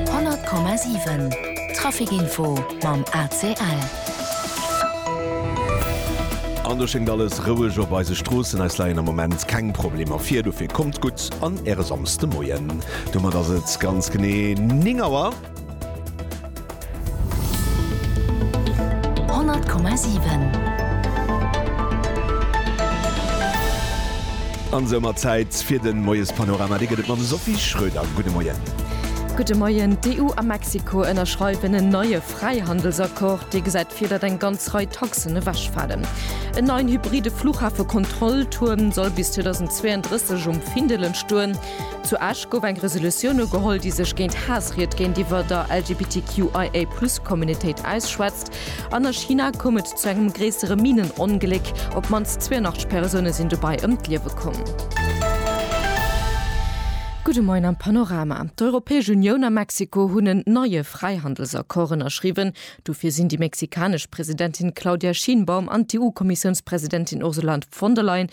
100,7 Trafic-Info mam ACL. An do schéngt alles roueg op eise Stroossen. Eis leien am Moment keng Problemer vir, dofir kommt gutt an äre Samsdemoien. Domat ass et ganz genee 9 Auer. 100,7. An soumat Zäit fir den Moiespanorama. Dee gëtt et mam Sophie Schröder. Gudde Moien. Gudde Moien. D'EU a Mexiko ënnerschreiwen en neie Fräihandelsaccord, dee gesäit vir, datt eng ganz Rei Taxen ewechfalen. En neien hybride Fluchhafekontrolltuerm soll bis 2032 um Findel entstoen. Zu Esch gouf eng Resolutioun ugeholl, déi sech géint Haassried géintiwwer der LGBTQIA-Plus-Communitéit ausschwätzt. An a China koum et zu engem gréissere Minenongléck. Op d'mannst 82 Persoune sinn dobäi ëm d'Liewe komm. Gudde Moien am Panorama. D'Europäesch Unioun a Mexiko hunn en neie Fräihandelsaccord ënnerschriwwen. Dofir sinn déi mexikanesch Presidentin Claudia Sheinbaum an d'EU-Kommissiounspresidentin Ursula von der Leyen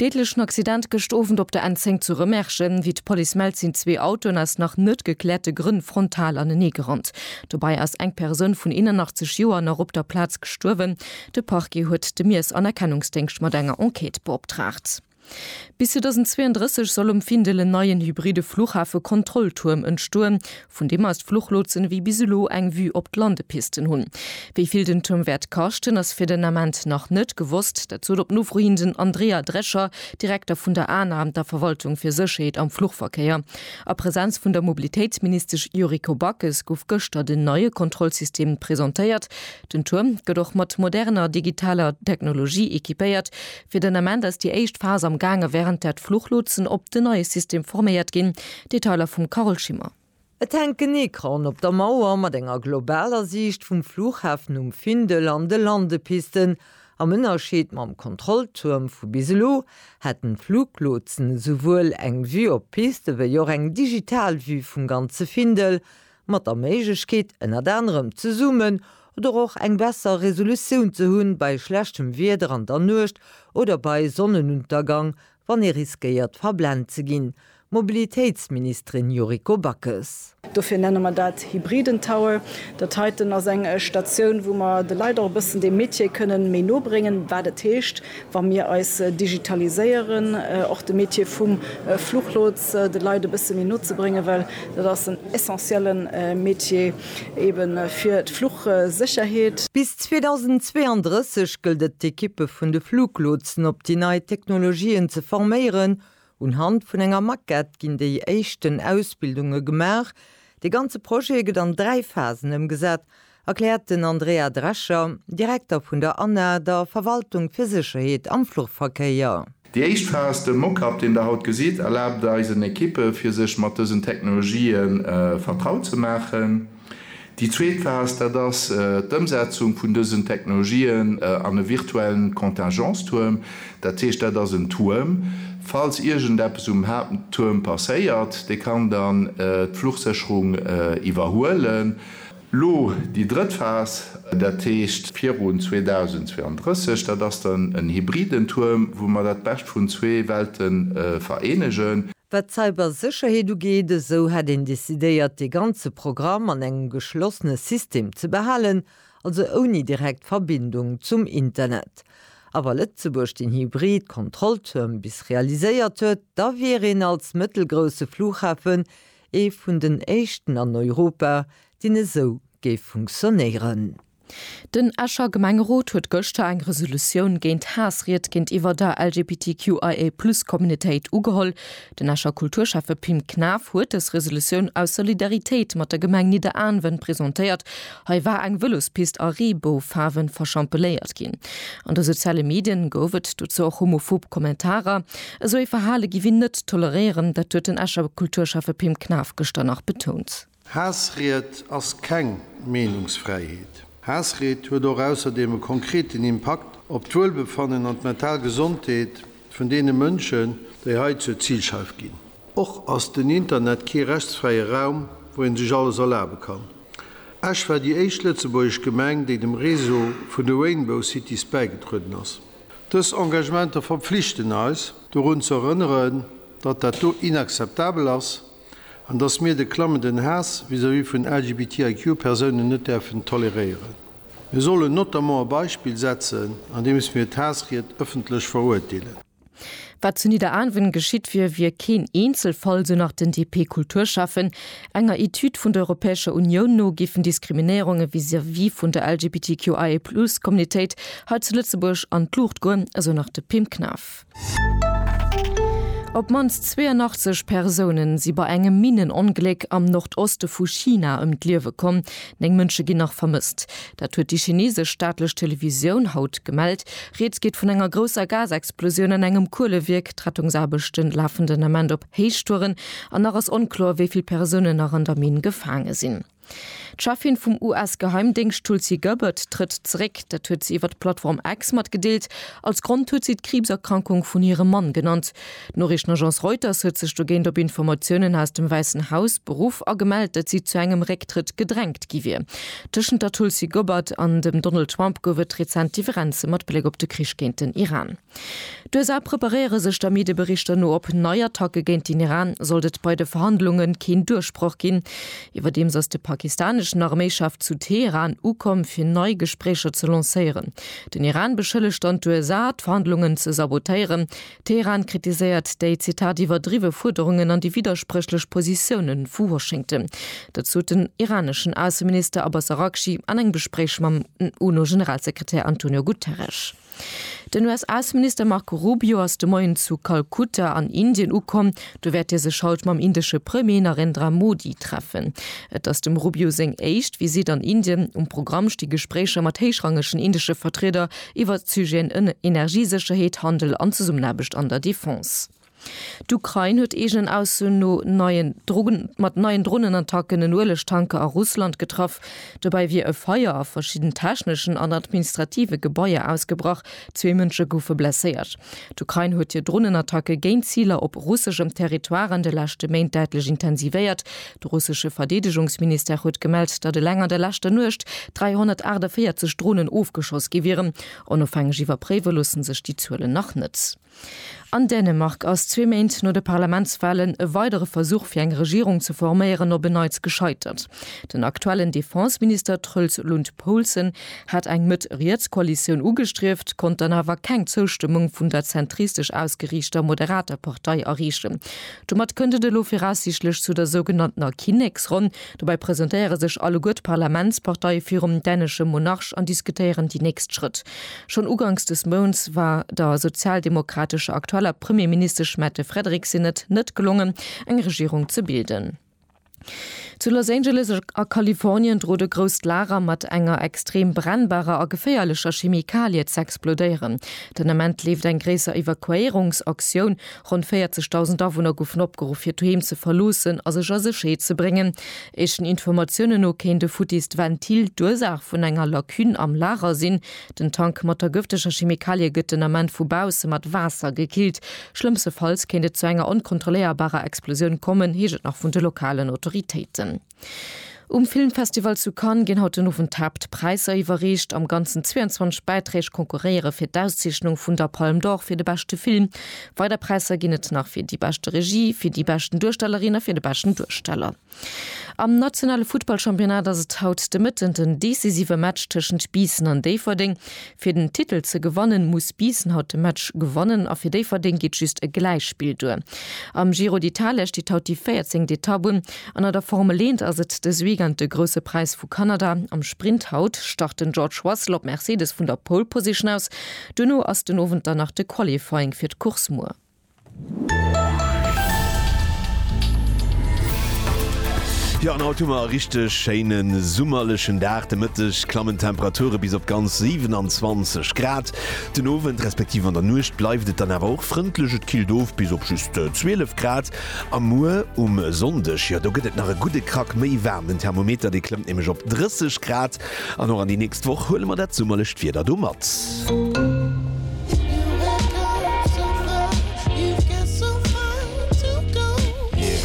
Deedlechen Accident gëscht Owend op der N10 zu Remerschen. Wéi d'Police mellt, sinn zwee Autoen aus nach net gekläerte Grënn frontal anenee gerannt. Dobäi ass eng Persoun vun 81 Joer nach op der Plaz gestuerwen. De Parquet huet de Miessanerkennungsdéngscht mat enger Enquête beoptraagt. Bis 2032 soll um Findel en neien hybride Flughafe-Kontrolltuerm entstoen. vun deem aus d'Fluchlotsen ewéi bis elo eng Vue op d'Landepisten hunn. Wéi vill den Tuerm wäert kaschten, ass fir den Ament nach net gewosst. Dat sot op Nofro hin den Andrea Drescher, Direkter vun der ana, der Verwaltung fir Sécherheet am Fluchverkéier. A Presenz vun der Mobilitéitsministesch Yuriko Backes gouf gëschter den neie Kontrollsystem presentéiert. Den Tuerm gëtt och mat moderner digitaler Technologie equipéiert. Fir den Ament ass déi éischt Phas am gaange wärend där d'Fluchlotsen op den neie System forméiert ginn. Detailer vum Carole Schimmer. Et hänkt en Ecran op der Mauer mat enger globaler Siicht vum Flughafen um Findel an de Landepisten. Am Ënnerscheed mam Kontrolltuerm vu bis elo hätten d'Fluglotsen esouwuel eng Vue op d'Piste wéi och eng digital Vue vum ganze Findel. mat der Méiglechkeet ënnert anerem zesummen oder och eng besser Resolutioun ze hunn bei schlechtem Wieder an der Nuecht oder bei Sonnenuntergang, wann ee riskéiert verblent ze ginn, Mobilitéitsministerin Yuriko Backes. Dofir nenne mer dat hybriden Tower. Dat heiten ass eng Statioun, wou mer de Leit och e bëssen dee Metier kënnen méi no bréngen, wat et heescht, wa mir eis digitaliséieren, och de Métier vum Fluchlots de Leit e bësse méi no ze bréngen, well dat ass en essentielle Métier ebe fir d'Fluchsécherheet. Bis 2032 gëllt et d'Ekippe vun de Fluglotsen op déi nei Technologien ze forméieren. Unhand vun enger Maquette ginn déi éischten Ausbildunge gemaach. De ganze Projet gëtt an dräi Phasen ëmgesat, erkläert den Andrea Drescher, Direkter vun der ana, der Verwaltung fir Sécherheet am Fluchverkéier. Déi éischt Phas, de Mock-up, deen der haut gesitt, erlaabt eisen Ekippe fir sech mat dësen Technologië vertraut ze maachen. Déi zweet Phas, dat ass d'Ëmsetzung vun dësen Technologien an e virtuellen Contingence-Tuerm. Dat heescht, dat ass en Tuerm, falls iergendeppes um Haapttuerm passéiert, dee kann dann d'Fluchsécherung iwwerhuelen. Lo déi drëtt Phas, dat heescht virun 2032, dat ass dann en hybriden Tuerm, wou mer dat Bescht vun zwee Welte vereenegen. Wat d'Cybersécherheet ugeet, esou hätt een decidéiert, dee ganze Programm an engem geschlossene System ze behalen, also ouni direkt Verbindung zum Internet. A wa Lëtzebuerg den hybrid Kontrolltuerm bis realiséiert huet, da wier een als mëttelgrousse Flughafen Ee vun den éischten an Europa, deen esou géif funktionéieren. Den Escher Gemengerot huet gëschter eng Resolutioun géint Haassried géintiwwer der LGBTQIA-Plus-Communitéit ugeholl. Den Escher Kulturschäffe Pim Knaff huet dës Resolutioun aus Solidaritéit mat der Gemeng Nidderaanwen presentéiert Hei war eng Vëlospist a Reeboufaarwen verschampeléiert ginn. An de soziale Medien gouf et dozou och homophob Kommentarer. Esou ee Verhale giff een net toleréieren, dat huet den Escher Kulturschäffe Pim Knaff gëschter nach betount. Haassried ass keng Meenungsfräiheet. Haassried huet och ausserdeem e konkreten Impakt op d'Wuelbefannen an d'mental Gesondheet vun deene Mënschen, déi hei zur Zilscheif ginn. Och ass den Internet kee rechtsfräie Raum, wou ee sech alles erlabe kann. Esch war déi éischt lëtzebuergesch Gemeng, déi dem Réseau vun de Rainbow Cities bäigedrueden ass. Dës Engagementer verpflichten eis, dorun ze erënneren, datt dat do inakzeptabel ass. An dass mir de klammenden Haass vis-à-vis vun LGBTIQ-Persounen net däerfen toleréieren. Mir sollen notamment e Beispill setzen, andeems mir d'Haassried ëffentlech verurteelen. Wat zu Nidderaanwen geschitt wier, wier keen Eenzelfall, sou nach den DP-Kulturschäffen. Enger Etüd vun der Europäescher Unioun no géifen Diskriminéierunge vis-à-vis vun der LGBTQIA+-Communitéit hei zu Lëtzebuerg an d'Luucht goen, esou nach de Pim Knaff. Op d'mannst 82 Persoune si bei engem Minnenongléck am Nordoste vu China ëm d'Liewe komm, néng Mënsche ginn nach vermësst. Dat huet déi chinesesch staatlech Televisioun haut gemellt. Rieds geet vun enger grousser Gasexplosioun an engem Kuelewierk. D'Rettungsaarbechte lafen den Ament op Héichtouren an nach ass onkloer, wéi vill Persounen nach an der Minn gefaange sinn. D'Cheffin vum US-Geheimdéngscht Tulsi Gabbard trëtt zeréck. Dat huet se iwwer d'Plattform X matgedeelt. Als Grond huet si d'Kriibserkrankung vun hirem Mann genannt. D'Noriichtenagence Reuters huet sech dogéint op Informatiounen aus dem Wäissen Haus beruff a gemellt, datt si zu engem Récktrëtt gedrängt gi wier. Tëschent der Tulsi Gabbard an dem Donald Trump gouf et rezent Differenze mat Bléck op de Krich géint den Iran. D'USA preparéiere sech der Medieberichter no op nei Attacke géint den Iran, sollt et bei de Verhandlunge keen Duerchbroch ginn. Iwwerdeems ass de pakistaneschen Arméichef zu Teheran ukomm, fir nei Gespréicher ze lancéieren. Den Iran beschëllegt dann d'USA, d'Verhandlungen ze sabotéieren. Teheran kritiséiert déi, Zitat, iwwerdriwwe Fuerderungen an déi widderspréchlech Positioune vu Washington. Dat sot den iraneschen Ausseminister Abbas Araghchi an engem Gespréich mam UNO-Generalsekretär Antonio Guterres. Den US-Ausseminister Marco Rubio ass de Moien zu Kalkutta an Indien ukomm. Do wäert hie sech haut mam indesche Premier Narendra Modi treffen. Et ass dem Rubio seng éischt Visitt an Indien. Um Programm sti Gespréicher mat héichrangegen indesche Vertrieder iwwert d'Sujeten Energiesécherheet, Handel an Zesummenaarbecht an der Defense. D'Ukrain huet eegenen Aussoen no neien Drogen mat neien Dronenattacken en Uelegtanker a Russland getraff. Dobäi wier e Feier a verschidden techneschen an administrative Gebaier ausgebrach, zwee Mënsche goufe blesséiert. D'Ukrain huet hir Dronenattacke géint Ziler op russeschem Territoire an de leschte Méint däitlech intensivéiert. De russesche Verdeedegungsministère huet gemellt, datt eleng an der leschter Nuecht 348 Dronen ofgeschoss gi wieren. Onofhängeg iwwerpréiwe loosse sech déi Zuelen nach net. An Dänemark ass zwee Méint no de Parlamentswalen e weidere Versuch fir eng Regierung ze forméieren op en Neits gescheitert. Den aktuellen Defenseminister Troels Lund Poulsen hat eng Mëtt-Riets-Koalitioun ugestrieft, konnt dann awer keng Zoustëmmung vun der zentristesch ausgeriichter Moderater Partei erreechen. Domat kënnt et elo viraussiichtlech zu der sougenanntener Kinneksronn. Dobäi presentéiere sech alleguer d'Parlamentsparteie virum dänesche Monarch an diskutéieren déi nächst Schrëtt. Schonn uganks des Mounts war der sozialdemokratescher aktueller Premierministesch Mette Frederiksen et net gelongen, eng Regierung ze bilden. Zu Los Angeles a Kalifornien drot e grousst Lager mat enger extrem brennbarer a geféierlecher Chemikalie z'explodéieren. Den Ament leeft eng gréisser Evakuéierungsaktioun, Ronn 40.000 Awunner goufen opgeruff fir d'Doheem ze verloossen a sech a Sécherheet ze bréngen. Éischten Informatiounen no kéint e futtist Ventil d'Ursaach vun enger Lacune am Lager sinn. Den Tank mat der gëfteger Chemikalie gëtt den Ament vu bausse mat Waasser gekillt. Schlëmmstefalls kéint et zu enger onkontrolléierbarer Explosioun kommen, heescht et nach vun de lokalen Autoritéiten. Um Filmfestival zu Cannes ginn haut den Owend d'Haaptpräisser iwwerreecht. Am Ganzen 22 Bäiträg konkurréiere fir d'Auszeechnung vun der Palme d'Or fir de beschte Film. Weider Präisser ginn et nach fir déi beschte Regie, fir déi beschten Duerstellerin a fir de beschten Duersteller. Am nationale Futtballchampionnat ass et haut de Mëtten den decisive Match tëschent Biissen an Déifferdeng. Fir den Titel ze gewannen, muss Biissen haut de Match gewannen a fir Déifferdeng geet just e Gläichspill duer. Am Giro d'Italia steet haut déi véierzéngt Etapp un an a der Formel eent ass et dës Weekend de Grousse Präis vu Kanada. Am Sprint haut start den George Russell op Mercedes vun der Pole Position aus. Duerno ass den Owend dann nach de Qualifying fir d'Course muer. Jo, an haut hu mer e richteg schéine summerlechen Dag. De Mëtteg klammen d'Temperature bis op ganz 27 Grad. Den Owend respektiv an der Nuecht bleift et dann awer och frëndlech, et killt of bis op just 12 Grad. A muer um Sonndeg, jo, do gëtt et nach e gudde Krack méi waarm, den Thermometer, dee klëmmt nämlech op 30 Grad. An och an déi nächst Woch huele mer dat summerlecht Wieder do mat.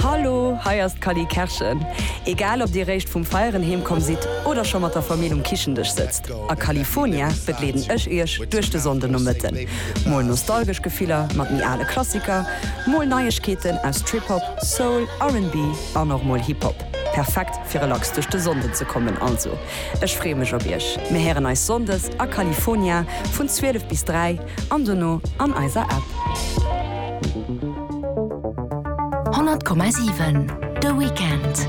Hallo, hei ass d'Cally Kerschen. Egal ob dir réischt vum Feieren heem komm sidd oder scho mat der Famill um Kichendësch sëtzt, a California begleeden ech iech duerch de Sonndenomëtten. Mol nostalgesch Gefiller mat méi ale Klassiker, mol Neiegkeeten aus Trip-Hop, Soul, RnB an och mol Hip-Hop. Perfekt! fir relax duerch de Sonnden ze kommen. Also ech freeë mech op iech. Mir héieren eis Sonndes a California vun 12 bis 3 an dono an eiser App. 100,7 de Weekend.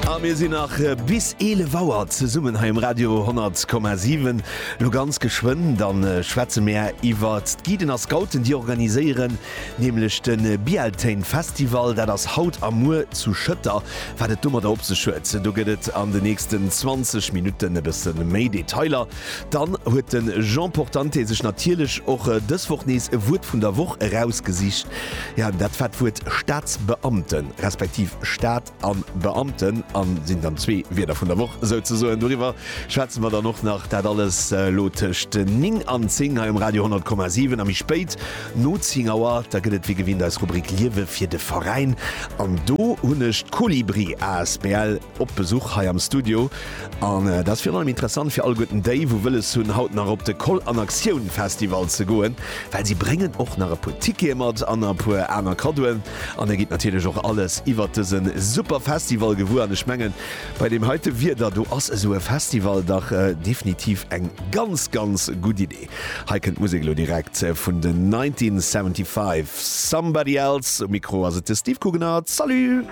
A mir sinn nach bis 11 Auer zesummen hei um Radio 100,7. Lo ganz geschwënn, da schwätze mir iwwert d'Guiden a Scouten, déi organiséieren Nämlech de Bealtaine Festival. Dat ass haut a muer zu Schëtter. Wat et domadder op sech huet, do gëtt et an de nächsten 20 Minutten e bësse méi Detailer. Dann huet de Jean Portante sech natierlech och dës Woch nees e Wuert vun der Woch erausgesicht. Jo, dat war d'Wuert Staatsbeamten, respektiv Staat. an Beamten an sinn dann zwee Wierder vun der Woch souzesoen. Doriwwer schwätze mer dann och nach. Dat alles elo tëscht 9 an 10 hei um Radio 10,7 a méi spéit no 10 Auer. Da gëtt et wéi gewinnt eis Rubrik Liewe fir de Veräin an do hunn ech d'Kolibri asbl op Besuch hei am Studio. An dat ass virun allem interessant fir alleguerten déi, wou wëlles hunn, haut nach op de Koll an Aktioun Festival ze goen, well si bréngen och nach e puer Tickete mat an e puer aner Kaddoen. An e gitt natierlech och alles iwwert dëse super Festival gewuer. An ech mengen, bei deem heite Wieder do ass esou e Festival dach definitiv eng ganz, ganz gutt Idee. Hei kënnt d'Musek elo direkt vun den 1975. Somebody Else, um Mikro ass et de Steve Cooganert. Salut!